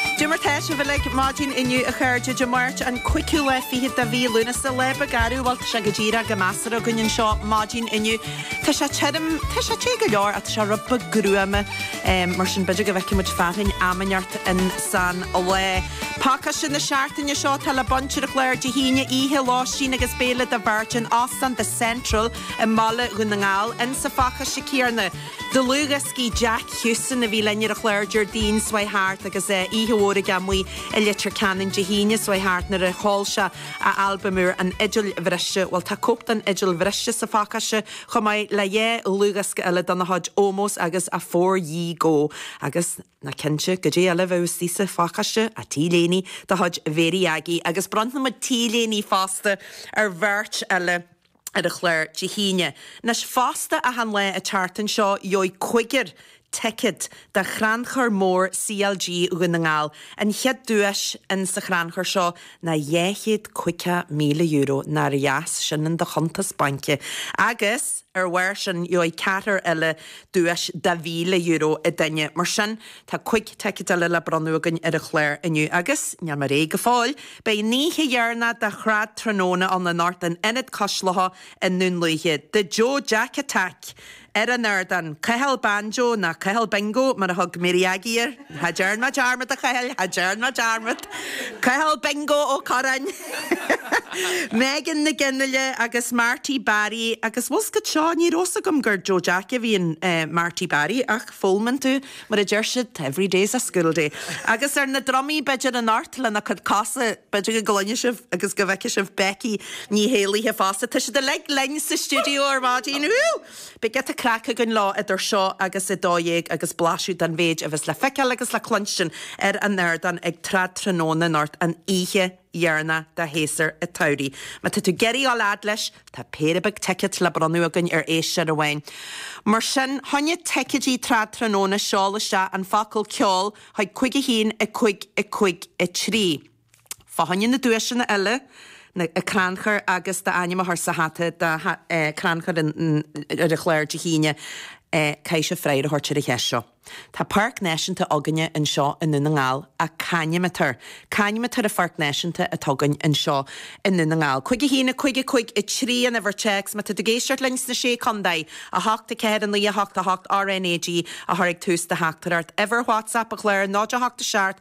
Goidé mar atá sibh uilig maidin inniu a chairde, Dé Máirt an cúigiú lá fichead de mhí Lúnasa. Lá beag garbh, bhuel, tá sé go díreach go measartha againn anseo maidin inniu. Tá sé tirim, tá sé te go leor ach tá sé rud beag gruama mar sin b'fhéidir go bhfeicfidh muid fearthainn am inteacht in san lá. Pacáiste na seachtaine seo tá le baint ar an gclár Dé hAoine oíche, lóistín agus béile do bheirt in Óstán The Central i mBaile Dhún na nGall. In sa phacáiste céarna. Dlúthdhioscaí Jack Houston a bhí linn ar an chlár Déardaoin seo chuaigh thart agus oíche mhór aige amuigh i Leitir Ceanainn Dé hAoine seo chuaigh thart nuair a sheol sé a albam úr An Fhidil Bhriste. Bhuel, tá cóip den Fhidil Bhriste sa phacáiste chomh maith le dhá dhlúthdhiosca eile dena chuid, Ómós agus Afore Ye Go agus níl mé cinnte goidé eile a bheidh istigh sa phacáiste, á, T-léiní de chuid Mhary Aggie agus bronnfaidh muid T-léiní fosta ar bheirt eile. ar an chlár Dé hAoine. Anois fosta achan lá an tseachtain seo gheobhaidh cúigear ticéad do Chrannchur Mór CLG Dhún na nGall. An chéad duais in sa chrannchur seo ná dhá chéad caoga míle euro, nár dheas sin in do chuntas bainc? Agus ar bharr sin gheobhaidh ceathrar eile duais de mhíle euro an duine. Mar sin tá cúig ticéad eile le bronnadh againn ar an chlár inniu agus níl mé réidh go fóill! Beidh an oíche dheireanach de Trad Tráthnóna ann anocht in Ionad Cois Locha i nDún Lúiche. The Joe Jack Attack ar an ardán. Cathal Banjo, nó Cathal Bingo mar a thug Mary Aggie air. Cha dtearn mé dearmad, a Chathail, cha dtearn mé dearmad. Cathal Bingo Ó Curráin, Megan Nic Fhionnghaile agus Marty Barry, agus bhfuil a fhios agat seo, ní raibh a fhios agam gur Joe Jack a bhí in Marty Barry ach foghlaimíonn tú. Mar a deir siad, every day's a school day. Agus ar na drumaí, b'fhéidir, anocht lena cuid cosa. B'fhéidir go gcluinfidh sibh agus go bhfeicfidh sibh Becky Ní hÉallaithe fosta. Tá siad uilig linn sa stiúideo ar maidin. Beidh giota craic againn leo idir seo agus a dó dhéag agus blaiseadh den mhéid a bheas le feiceáil agus le cluinstin ar an ardán ag Trad Tráthnóna anocht, an oíche dheireanach de shéasúr an tsamhraidh. Má tá tú ag iarraidh a ghabháil fhad leis tá péire beag ticéad le bronnadh againn ar éisteoir amháin. Mar sin fá choinne ticéidí Trad Tráthnóna seol isteach an focal ceol chuig 51553. Fá choinne na duaiseanna eile an crannchur agus d'ainm a chur sa hata don chrannchur ar an chlár Dé hAoine. Caithfidh sibh freagra a thabhairt ar an cheist seo. Tá Páirc Náisiúnta againne anseo i nDún na nGall c'ainm atá air? C'ainm atá ar an Pháirc Náisiúnta atá againn anseo i nDún na nGall. Cúig a haon, a cúig, a cúig a trí an uimhir téacs má tá tú ag éisteacht linn sna sé contae, a hocht, a ceathair, a naoi, a hocht, a hocht, RNAG a chur ag tús do theachtaireacht. Uimhir WhatsApp an Chláir, 08 7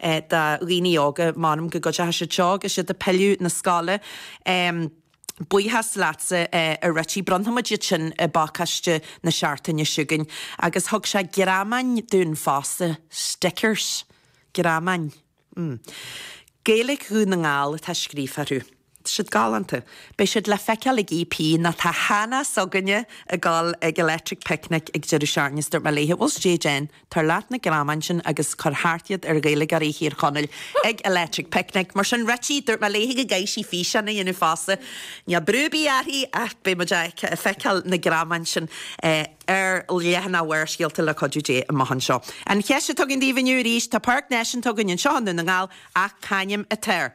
do dhaoine óga. M'anam go gcuideochaidh siad seo agus siad a' pilleadh 'na scoile. Buíochas leatsa a Richie. Bronnfaimid iad sin i bpacáiste na seachtaine seo chugainn. Agus thug sé greamáin dúinn fosta. Stickers. Greamáin. Gaeilic Dhún na nGall atá scríofa orthu. Tá siad galánta. Beidh siad le feiceáil ag EP, nó tá Hannah s'againne ag goil ag Electric Picnic ag deireadh seachtaine is dúirt mé léithe, bhuel stéidh déan, tabhair leat na greamáin sin agus cuir thart iad ar Ghaeilgeoirí Thír Chonaill ag Electric Picnic, mar sin Richie, dúirt mé léithe go gcaithfidh sí físeán a dhéanamh fosta. Níl brú ar bith uirthi ach beidh muid ag feiceáil na greamáin sin ar leathanaigh Bharrscéalta le cuidiú Dé amuigh anseo. An cheist atá agam daoibh inniu arís, tá páirc náisiúnta againn anseo i nDún na nGall ach c'ainm atá air?